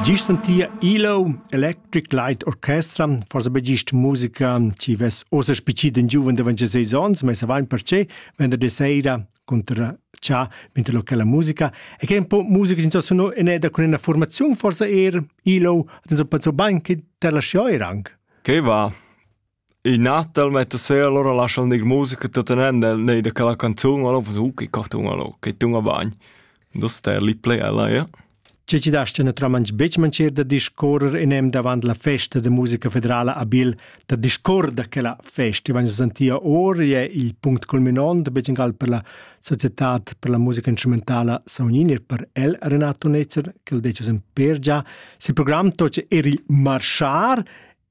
Gist sentia Ilo Electric Light Orchestra, forsa be gist musica chi vess ossa spicit in giuven davant 6 ons, ma savain perche, venderdi sera contra cha vinter locala musica e che un po musica sin sono in eda con una formazione forse er ilo hat uns pensò bain che te la scioir anche che va In natal metta sera allura lascha'l gnir musica tutenent nel nei da quella canzun allura fas uh che cartun allura che tun a bagn. Do ster lì play ella, ja. Che ci dast na tramans betg mancher da discorrer enem davant la festa de musica federala a Bil, da discorrer da quella festa, vanno sentia or è il punct culminant becingal per la società per la musica instrumentale Saunini e per el Renato Netzer, che il decus in per già, si program toce er il marchar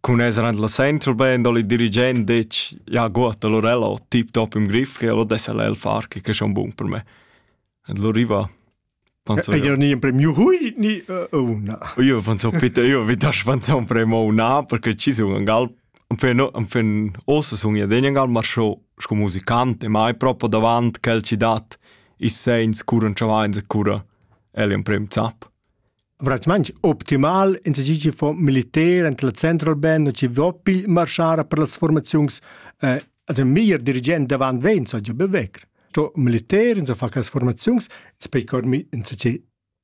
Cun esser en la Central Band ho il dirigent detg «Ja gut, allora ella ho tip-top im Griff, ella dess el far che che schon bun per me». E lo riva Panzo. Io ni in premio hui ni una. Io panzo bitte io vi das panzo un premio una perché ci sun an gal an fen an fen ossa sun ja den gal mar scho sco musicante ma è proprio davant quel ci dat i sens cura un chavains e cura el in premio zap. Bratsmanch optimal in se fo militer ent la central ben no ci vopil marschar per las formaziuns eh, ad un miglior dirigent davant vein so jo bewegr. To militer in se fa cas formaziuns spei cormi in se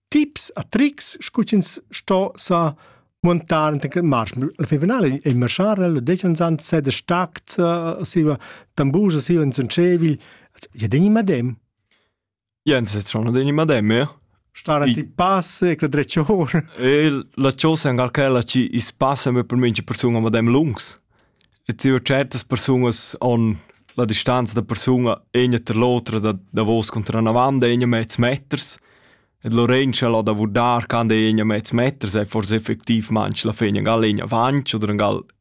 tips a tricks scucins sto sa montar ent che marsch al finale e marschar lo decen san se de stackt siva tambus siva in sun cevil ja deni madem Jens è schon degni madem, ja? Stara ti passe, che dreccior. E la chosa è anche ci i spasse me per mince persona madem lungs. E ti ho certas personas on la distanza da persona egna ter l'otra da da vos contra una vanda egna mezz meters. Et Lorenza la da vurdar can de egna mezz meters è forse effektiv manch la fegna gal egna vanch oder gal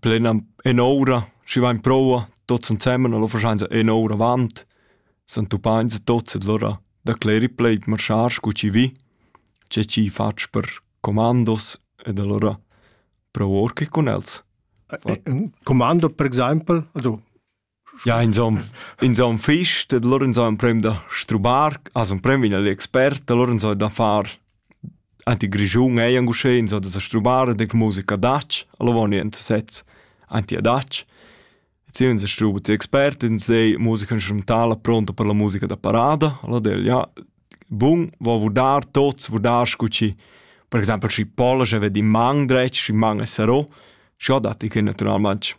plenam en ora, schi vain proua, tots ensemen, allora faschains en ora avant, s'han tupains tots, allora da cleri plei marschar scu chi vi, che chi fatsch per comandos ed allora prou or che cun els. Fat... Commando per exaimpel, also Ja, inzon, inzon fich, dad lur inzò emprem da strubar, as emprem vegn l'expert, da lur inzò da far anti grischun ei anc uschè, inzò da sa strubar dec musica datsch, alla voni ins sez anti adatsch. Et si uns struba ti expert, ins dei musica instrumentala pronta per la musica da parada, alla del, ja, bun, vo vurdar tots, vurdar scu ci, per exempel, schi Polasch eved in mang dretg, schi mang è sarò, schi ho dat i che naturalment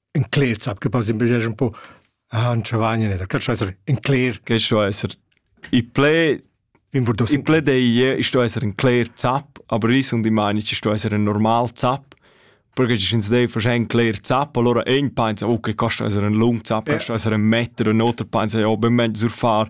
in cler zap che pas imbeges un po han chavagna da cal esser in cler che sto esser i ple in ple dei sto esser in cler zap aber ris und die meine ich sto esser ein normal zap perché ci sind dei facein cler zap allora ein pensa okay costa esser ein lung zap costa esser ein meter un otro pensa ja ben sur far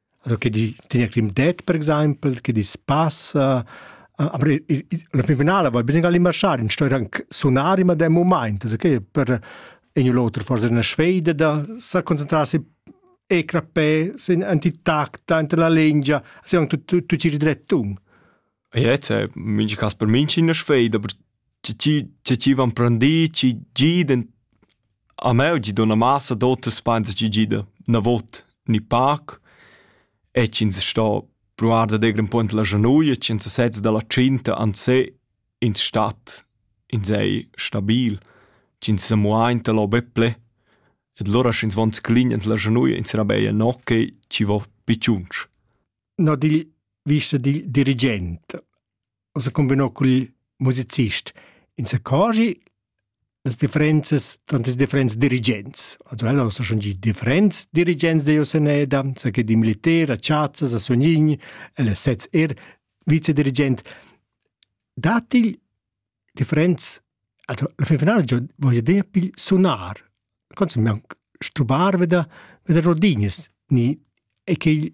Also che di tegna crim det per exaimpel, che dis passa. Aber la fin finala vai bisogna limaschar in stoir anc sunar in madem moment, also che per in u l'oter forse una sfeida da sa concentrarsi e crappé sin antitacta enter la lingia, se anche tu tu ci ridrettun. Ja, jetzt äh, minch cas per minch in sfeida, aber Chi chi van prendì, chi gidan a me u gidun a massa d'oters pensa chi gida 'na vot gnü pac e ch'ins sto pruvar dad eir ün po int la schanuoja, ch'ins sezza da la tschinta ansè in stat insei stabil, ch'ins sa muainta lo be ple e lura sch'ins von sclign ins la schanuoja ins sarà be no che chi vo pichunch. No digl vista digl dirigent. o se combinò col musicist. In se cogi las differenzas tanto les differents dirigents. Also ella sa schon die differents dirigents de Joseneda, sa che di militer, a Ciazza, a Sognin, ella sez er vicedirigent. Datil differents also la fin finale jo voglio dire pil sonar. Consum mi anche stubar veda veda Rodines ni e che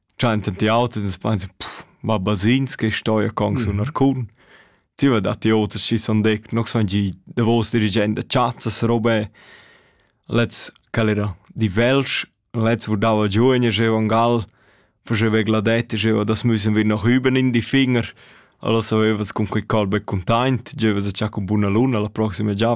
Tschanten ti auter, das meinst pff, ma basins che stoi con sun arcun. Ti va da ti oter chi son dec, noch son gi davos dirigent da chazzas robé. Letz quel era di Welsch, letz wo dava giù in jeu an Gal, faceva gladette, jeu das müssen wir noch üben in die Finger. Allora avevas con quei colbe containt, jeu vas a cha con buna luna la proxima già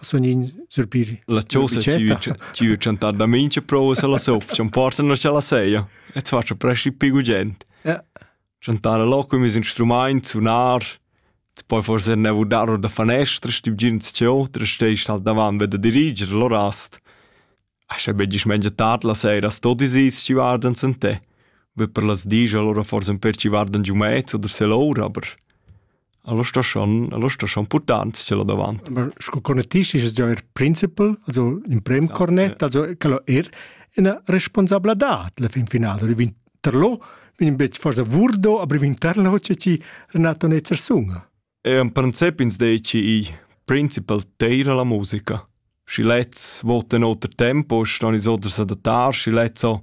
sun in surpiri. La chosa ci chantar da mincha prova se la sop, chan portan na la seia. Et faccia presci pigu gent. Ja. Chantare loco mis instrumaint, sunar, poi forse ne vudar da fanestra, stib gin ciò, tra steist halt davan ved diriger, lo rast. Ascha be dismengia tard la saira sto ti sis chi vardan sen te. Be per las dis allora forsa un per chi vardan giu mez oder se l'ora, aber allora sta schon, allora sta schon portant ce là davant. Aber sco conetist ist es ja er principal, also in prem Esatto, cornet, ja. also quello er una responsabladad la fin finale. Oder vin terlo, vin bet forsa vurdo, aber vin terlo c'è ci Renato Netzer sunga. Ean pranzep ins dechi igl principal teira la musica. Schi lezs votan oter tempo, ston ins oder s'adattar, schi lezs ho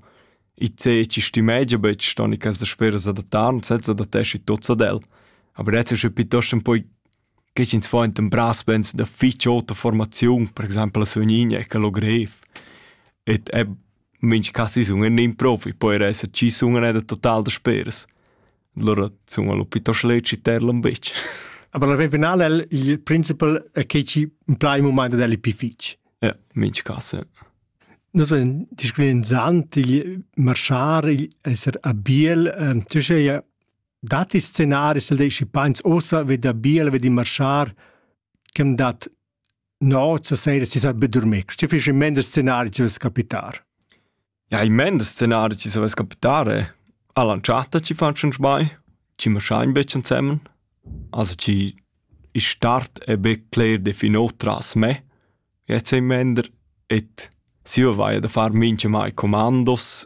i zeci stimegia betg, ston i cas dasper s'adattar, ins het s'adatteschi tots ad el. Aber jetzt ist es piuttosto un poi che ins fa enten brassbands da fitg ota formaziun, per exempel a Sugnigna, e Calogrev. Et è mincha si sun ün improvi, poi er esser chi sun ena total dasperas. Lura sun allo pitos leci terlon bitch. Aber la final è il principal che ci impla il momento del più fitch. Ja, minch casse. Non so, disclin zant il marchar il esser a biel, tu sei dati scenari se dei scipains osa vedi a biel vedi marchar, chem dat No, zur Serie si sa be dormir. Sti fich in mender scenari ci vess capitar. Ja, in mender scenari ci vess capitare. A lanciata ci fan schon sbai. Ci ma schein be zusammen. Also ci i start e be cler definot tras me. Jetzt in mender et si vai da far minche mai comandos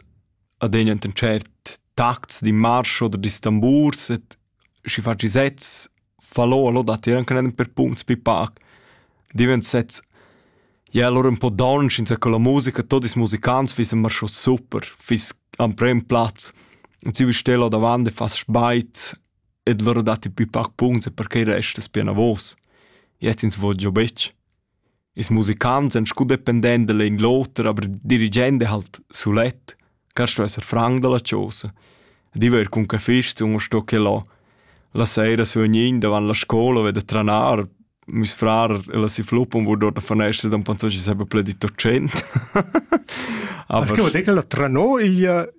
ad en enten cert takts di marsch oder di stamburs et si fa ci sets falò allò datier anche nen per punts pi pac divent sezs ja allora un po down since che la musica tot is musicants fiss immer schon super fiss am prem platz und sie stella davant e fast speit ed loro dati pi pac punts e perché resta es pia navos jetzt ins voglio betg Ils musicants èn sco dependents da l'in l'oter, aber il dirigent è halt sulet. Kannst du esser frank dalla chosa? Ed io er cun cafist sun sto che là. La sera sognin davant la scola veda tranar, meis frar e la si fluppun vor dort a fanestra, dann panzò ci seba ple di 800. Aber... Ach, che vuol dir che la tranò igl